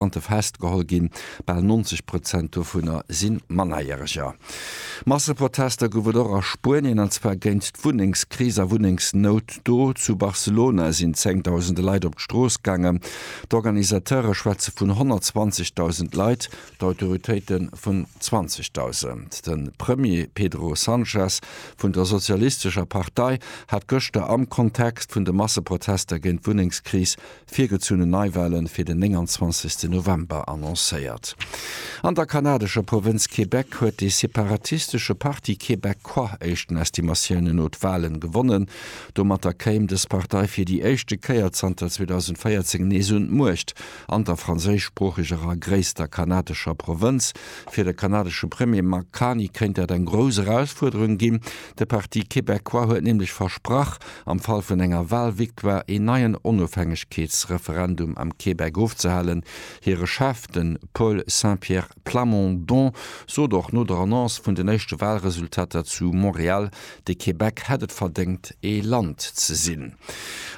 Migrantë festgeholl ginn, bal 90 Prozent dovunner si Mannerjäreger. Masseprotester gouf et och a Spuenien, an zwar géint d'Wunnengskris a Wunnengsnout do. Zu Barcelona sinn zéngdausende Leit op d'Strooss gaangen. D'Organisateure schwätze vun 120.000 Leit, d'Autoritéite vun 20.000. De Premier Pedro Sanchez vun der sozialistescher Partei hat gëschter am Kontext vun de Masseprotester géint d'Wunnengskris virgezunnen Neiwale fir den 29 November annoncéiert. An der kanadescher Provënz Québec huet dee separatistesche Parti Québecquoi éischten Estimatiounen no d'Walen gewonnen. Domatter kéim dës Partei fir déi éischte Kéier zanter 2014 nees un d'Muecht an der franséischsproocheger a gréisster kanadescher Provënz. Fir de kanadesche Premier Mark Carney kéint dat eng grouss Erausfuerderung ginn. De Parti Québecquoi huet nämlech versprach, am Fall vun enger Wahlvictoire een neien Onofhängegkeetsreferendum am Québec ofzehalen. Hire Chef, de Paul Saint-Pierre Plamondon, sot och no der Annonce vun den éischte Wahlresultater zu Montréal, de Québec hätt et verdéngt, ee Land ze sinn.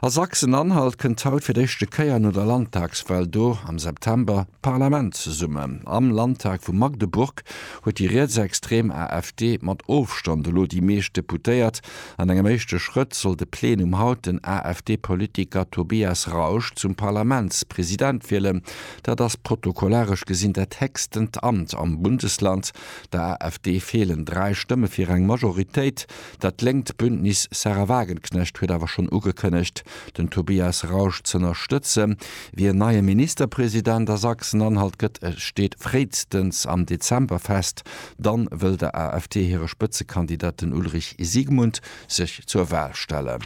A Sachsen-Anhalt kënnt haut fir d'éischte Kéier no der Landtagswahl do am September d'Parlament zesummen. Am Landtag vu Magdeburg huet déi rietsextrem AfD mat Ofstand elo déi meescht Deputéiert. An engem éischte Schrëtt soll de Plenum haut den AfD-Politiker Tobias Rausch zum Parlamentspresident wielen. Dat ass protokollaresch gesinn dat héchstent Amt am Bundesland. Der AfD feelen dräi Stëmme fir eng Majoritéit. Dat lénkt Bündnis Sahra Wagenknecht huet awer schonn ugekënnegt, den Tobias Rausch z'ënnerstëtzen, wéi en neie Ministerpresident a Sachsen-Anhalt gëtt. E steet fréistens am Dezember fest. dann wëll der AfD hire Spëtzekandidat, den Ulrich Siegmund, sech zur Wal stellen.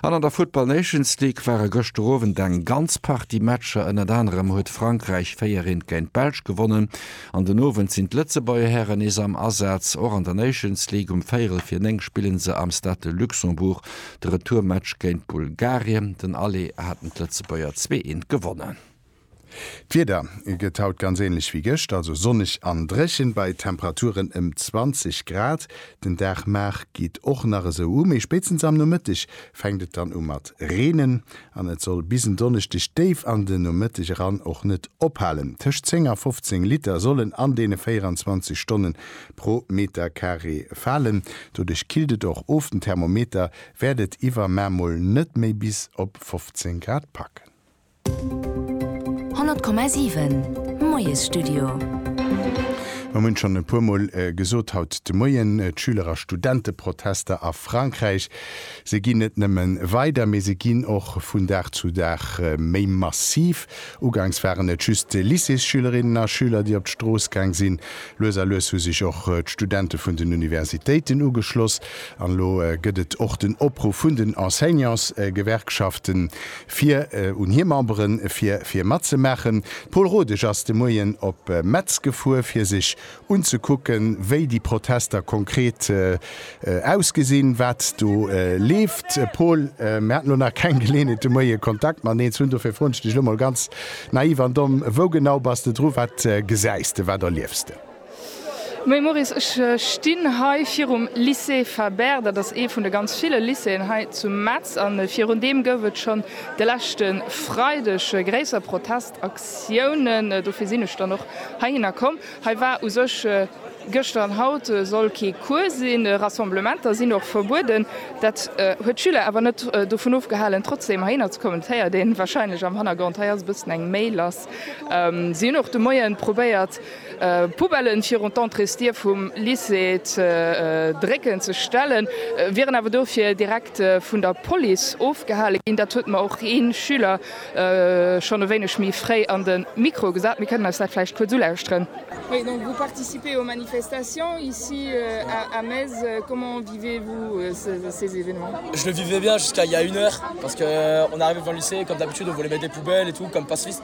An an der Football Nations League ware gëschter Owend eng ganz Partie Matcher. Ënnert anerem huet Frankräich 4 eent géint d'Belsch gewonnen. An den Owend sinn d'Lëtzebuerger Hären nees am Asaz. Och an der Nations League um Véierel vir 9 spillen se am Stade de Luxembourg de Retourmatch géint Bulgarien. Den Aller haten d'Lëtzebuerger zwee eent gewonnen. D'Wieder gëtt haut ganz änlech wéi gëscht, also sonneg an dréchen bei Temperaturen ëm 20 Grad. Den Dag mar geet och nach esou u, mee spéitstens am Nomëtteg fänkt et dann u mat reenen an et soll bis en Donneschdeg déif an den Nomëtteg eran och net ophalen. Tëscht 10 a 15 Liter sollen an deene 24 Stonne pro Meterkaree falen. Doduerch killt et och of, den Thermometer wäert et iwwermar mol net méi bis op 15 Grad packen. 100,7 Moiesstudio. Mir hunn schonn e puermol gesot haut de Moien, d'Schüler a Studenteprotester a Frankräich, se ginn net nëmme weider, mee se ginn och vun Dag zu Dag méi massiv. Ugangs waren et just Lycéesschülerinnen a schüler, déi op d'Strooss gaang sinn. Lues a lues hu sech och d'Studente vun den Universitéiten ugeschloss. An elo gëtt et och den Opruff vun den Enseignantsgewerkschaften, Fir un hir Memberen fir fir matzemaachen. D'Paul Rodesch ass de Moien op Metz gefuer fir sech unzekucken, wéi déi Protester konkret ausgesinn, wat do leeft. Paul, mir haten elo nach keng Geleeënheet de Moie Kontakt mateneen ze hunn, dofir froen ech dech elo mol ganz naiv an domm, Wou genau bass de dru? Wat gesäis de, wat erliefs de? Moie Maurice, ech stinn hei virum Lycée Fabert. Dat ass ee vun de ganz ville Lycéeën hei zu Metz. A virun deem gouf et schonn de leschte Freideg gréisser Protestaktiounen. Dofir sinn ech dann och heihinner komm. Hei war u sech gëschter an haut soll kee Cours sinn. Rassemblementer sinn och verbueden. Dat huet d'Schüler awer net dovun ofgehalen, trotzdeem heihinner ze kommen. Dat héiert een warscheinlech am Hannergrond. Hei ass e bëssen eng méi lass. Si hunn och de Moien probéiert, Poubellen virun d'Entréesdier vum Lycée ze drécken, ze stellen, wieren awer dofir direkt vun der Police ofgehale ginn. Dat huet mer och ee Schüler schonn e wéineg méi fréi an de Mikro gesat. Mir kënnen eis dat vläicht kuerz ulauschteren. Oui donc vous participez aux manifestations ici à Metz, comment vivez vous ces événements? Je le vivais bien jusqu'à il y a une heure parce que on arrive devant le lycée comme d'habitude on voulait mettre des poubelles et tout comme pacifiste.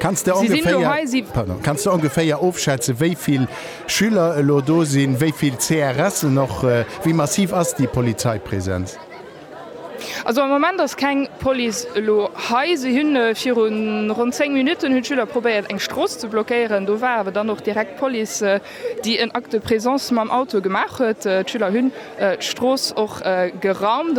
Kanns de ongeféier ofschätzen, wéi vill Schüler elo do sinn, wéi vill CRSen och? Wéi massiv ass déi Polizeipräsenz? Also am Moment ass keng Police elo hei. Si hunn viru ronn 10 Minutten hunn d'Schüler probéiert eng Strooss ze blockéieren. Do war awer dann och direkt d'Police, déi en Acte de présence mam Auto gemaach huet. D'Schüler hunn d'Strooss och geraumt.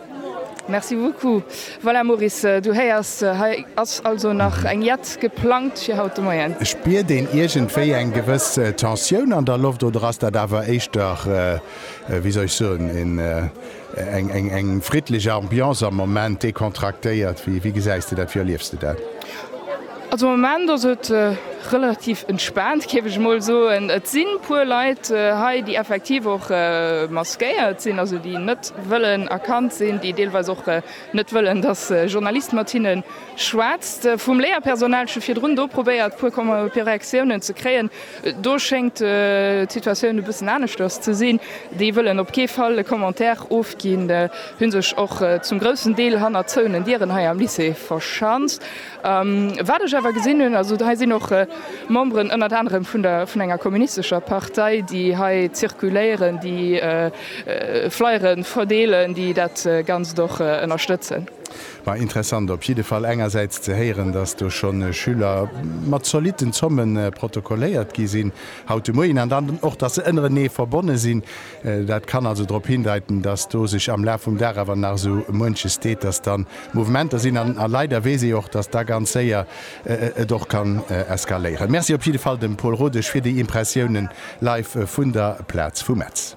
Merci beaucoup. Voilà Maurice, du héiers, hei ass also nach eng Jett geplangt fir haut de Moien. Spiert een iergendwéi eng gewëss Tensioun an der Loft oder ass dat awer éischter, wéi soll ech soen, een, eng friddlech Ambiance am Moment, decontractéiert? Wéi gesäis de dat, wéi erliefs de dat? Also am Moment ass et relativ entspaant, géif ech emol soen. Et si puer Leit hei, déi effektiv och maskéiert sinn, also déi net wëllen erkannt sinn, déi deelweis och net wëllen, datt e Journalist mat hinne schwätzt. Vum Léierpersonal scho virdrun do probéiert, puer Reaktiounen ze kréien. Do schéngt d'Situatioun e bëssen aneschters ze sinn. Déi wëllen op kee Fall e Commentaire ofginn, hu sech och zum groussen Deel hanner zouenen Dieren hei am Lycée verschanzt. Wat ech awer gesinn hunn, also hei sinn och Memberen ënnert anerem vun der, vun enger kommunistescher Partei, déi hei zirkuléieren, déi Flyere verdeelen, déi dat Ganzt och ënnerstëtzen. Ma interessant op jidde Fall engersäits ze héieren, datt do scho Schüler mat zolitten Zomme protokolléiert gi sinn haut de Moien an dann och, datt se ënnerenee verbonne sinn. Dat kann also drop hindeiten, dass do sech am Laf vum Dag awer nach esou muenches deet, dass da Mouvementer sinn. A leider weess ee och, dass da ganz séier et och kann eskaléieren. Merci op jidde Fall dem Paul Rodesch fir déi Impressiounen live vun der Plaz vu Metz.